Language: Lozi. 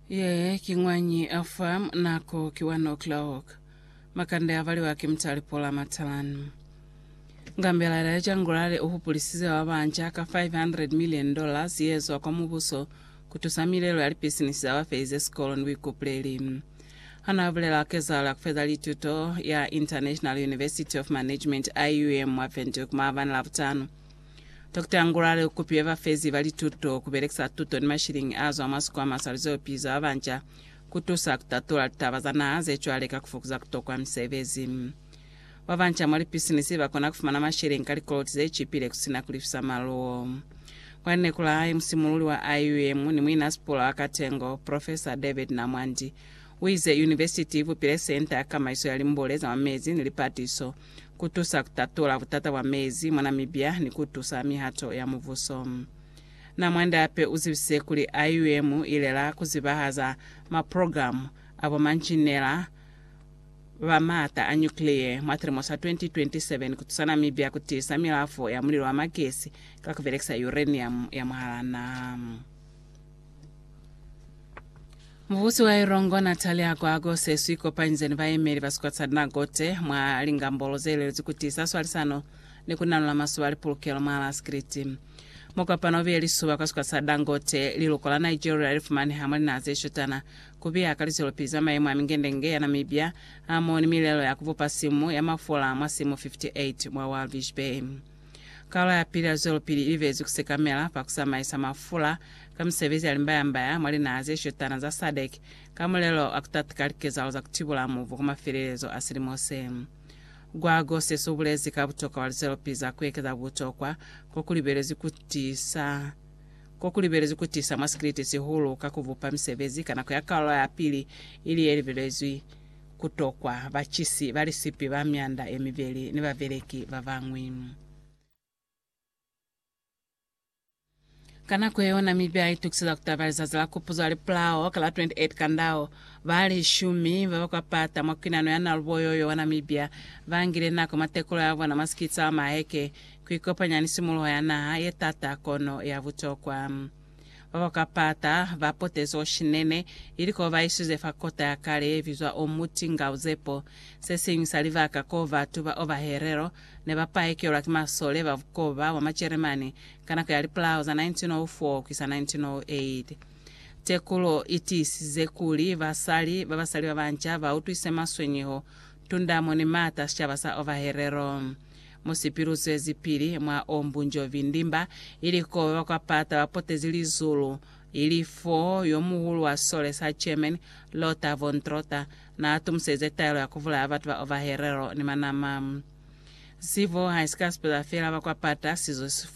Ye ki ñwañi a fa nako ki wa Noklahok. Makande a valiwa ki mutali Paula Matalan. Ngambelala ya Jangulale u hupulisize ba banca ka 500 million dollars ye zwa kwa mubuso ku tusa milelo ya lipisinisi za ba felize sikolo ni buikupuleli. Ha n'a bulela kezahalo ya ku feza lituto ya International University of Management, IUM, mwa Windhoek maabani Labutano, Dokota Ngulale u kupile bafezi ba lituto ku belekisa tuto ni mashilingi a zwa mwa sikwama sa Luzeopi za Babanca ku tusa ku tatula litaba za naha ze cwale ka ku fokuza ku tokwa misebezi. Babanca mwa lipisinisi ba kona ku fumana mashilingi ka likoloti ze cipile ku si na ku lifisa maluwo. Kwa lineku la hae, musimululi wa IUM ni muinasipula wa Katengo, Profesa David Namwandi, u ize Univesiti i bupile Senta ya Kamaiso ya Limbule za mwa Mezi ni Lipatiso, ku tusa ku tatula butata bwa mezi mwa Namibia ni ku tusa mihato ya mubuso. Na mwanda hape u zibisise kuli IUM i lela ku zibahaza maprogramu a bomanjinela ba maata a nyukliye mwa silimo sa 2027 ku tusa Namibia ku tiisa milafo ya mulilo wa magesi ka ku belekisa uranium ya mwahal'a naha. Mubusi wa Ilongo Natalia Agwagwa useswi ikopanyize ni bayemeli ba sikolo sa Dinagote mwa lingambolo zeelelezwi kutiisa swalisano ni kunanula masuba a lipulukelo mwa Alaskiriti. Mukopano ubiye lisuba kwa sikolo sa Dangote, liluko la Nigeria lifumaneha mwa linaha zeshutana, kubiya ka lizwelopili za mayemo a mingendenge ya Namibia hamoho ni milelo ya kubupa simu ya mafula mwa simu 58 mwa Walvis Bay. Kaula ya pili ya zwelopili i libelezwi ku sekamela fa ku samaisa mafula ka misebezi ya limbaya-mbaya mwa linaha ze shotana za SADC ka mulelo wa ku tatika likezahalo za ku tibula mubu kwa mafelelezo a silimo se. Gwago sesi u bulezi ka butokwa bwa lizwelopili za ku ekeza butokwa ko ku libelezwi ku tiisa ko ku libelezwi ku tiisa mwa sikiliti sihulu ka ku bupa misebezi ka nako ya kaula ya pili ili ye libelezwi ku tokwa bacisi ba lisipi ba myanda ye mibeli ni babeleki ba bañwi. Ka nako ye yona mi ba itukiseza ku taba lizazi la kupuzo la lipulao ka la 28 Kandao, ba lishumi ba ba kwa Pata mwa kwinano ya Naluboyo yo wa Namibia ba ngile nako mwa tekulo ya bona mwa sikitsa wa maheke ku ikopanya ni simuluho ya naha ye t'ata kono ya butokwa. Ba ba ka pata ba potezo shinene, ili ko ba iswize fa kota ya kale ye bizwa Omuti nga Uzepo. Se siñwi sa libaka ko batu ba oba helelo ne ba paekelwa ki masole ba bukoba bwa Majeremani ka nako ya lipulao za 1904 ku isa 1908. Tekulo i tiisize kuli basali ba basali ba banca ba utwise maswenyeho, tundamo ni m'ata sicaba sa oba helelo. Mu si pilusezi pili mwa o mbunjovi ndimba, ili koba ba kwa pata ba potezi lizulu, ili fo yo muhulu wa sole sa German, Lothar von Trotha, na tumuselize taelo ya ku bulaya batu ba ovaherero ni manama. Sivo ha si ka sipeza fela ba kwa pata, sizo si fumi.